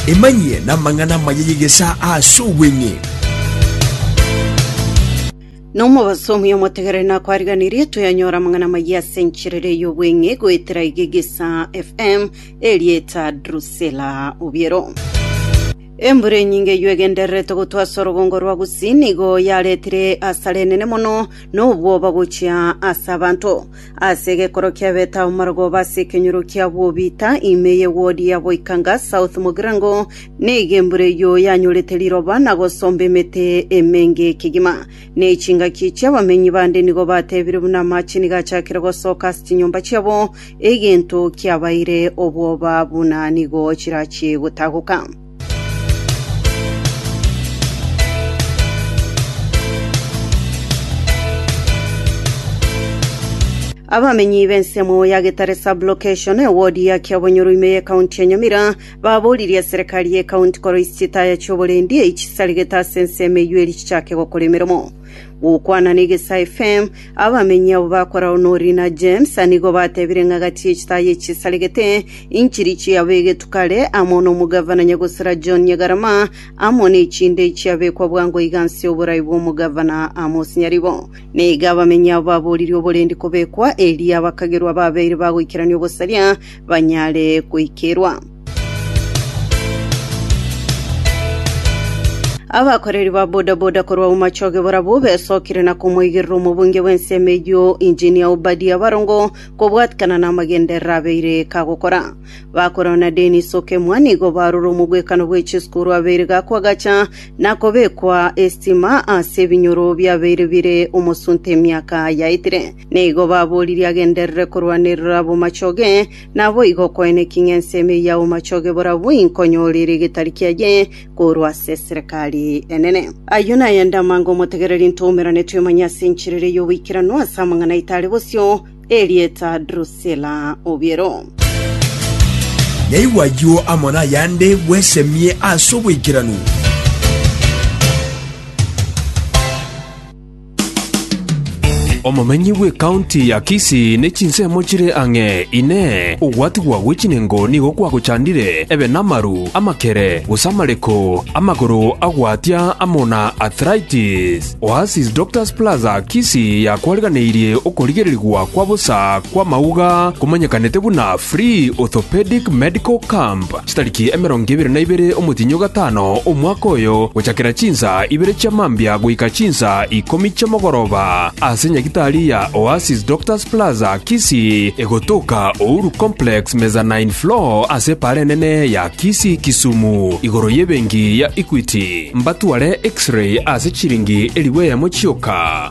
Emanyie namang'ana amaya y'egesaa ase obweng'e. Na omobasomi omotegere nakwariganirie toyanyora amang'ana amayia ase enchirere y'obweng'e goetera iga egesa FM erieta Drusilla Obiero. Embura enyinge eywo egendererete gotwa ase orogongo rwa Gusii nigo yaretire asara enene mono na obwoba gochia ase abanto. Ase egekorwa kia Beta amarogoba ase ekenyoro kia Bobita, ime ye wodi ya Boikanga South Mogirango, nigo embura eyio yanyorete riroba na gosomba emete emenge kegima. Ne chingaki chi'abamenyi bande nigo batebire buna amache nigo achakire gosoka ase chinyomba chiabo, egento kiabaire obwoba buna nigo chirachie gotagoka. Abamenyi b'ensemo ya Getare Sub-Location, ewodi ya Kiabonyoru ime y'Ekaunti ya Nyamira, baboririe eserekari y'ekaunti koroisia etaya chi'oborendi eichisaregete ase ensemo eyio eri chichake gokora emeromo. Gokwana ne Gesaai FM, abamenyi abo bakoragwa n'Orine na James nigo batebire ng'a gati ye chitaaya echisaregete inchiri chiabegetwe kare amo n'omogavana nyagosera John Nyagarama amo nechinde chiabekwa bwango iga nse y'oborai bw'omogavana Amos Nyaribo. Na iga abamenyi abo baboririe oborendi kobekwa eria abakagerwa babeire bagoikerania obosaria banyare goikerwa. Abakoreri ba bodaboda korwa Umachoge barabwo besokire na komoigerera omobunge bw'ensemo eyio Engineer Obadia Barongo kobwatikana namagenderero abeire kagokora. Bakorwa na Dennis Okemwa nigo barure omogwekano bwe chisukuru abeire gakwa agacha na kobekwa estima ase ebinyoro biabeire bire omosunte emiaka yaetire. Nigo baboririe agenderere korwanerera abomachoge, naboigo okoeneki ng'ense ime ya omochoge borabwo inkonyora ere egetari kiaye korwa ase eserekari enene. Ayio nayende amange omotegereri ntoumerane twemanye ase enchera ere y'oboikeranu ase amang'ana aito are bosio, erieta Drusila obiero. Naigwe ayio amo nayande bwesemie ase oboikeranu. Omomenyi bw'ekaunti ya Kisii ne chinsemo chire ang'e, Inee! Ogwatigwa gwe chinengo nigo kwagochandire? Ebe namaru, amakere, gose amareko, amagoro agwatia amo na arthritis? Oasis Doctors Plaza, Kisii yakwariganeirie okorigererigwa kwa bosa kw'amauga komanyekanete buna Free Orthopedic Medical Camp. Chitariki emerongo ebere na ibere omotienyi o gatano omwaka oyo, gochakera chinsa ibere chia mambia goika chinsa ikomi chi'omogoroba, ase nyagitari ya Oasis Doctors Plaza, Kisii, egotoka Uhuru Complex, mezzanine floor, ase epaara enene ya Kisii, Kisumu, igoro y'ebenki ya Equity, mbatware X-ray ase chiringi elifu eyemo chioka.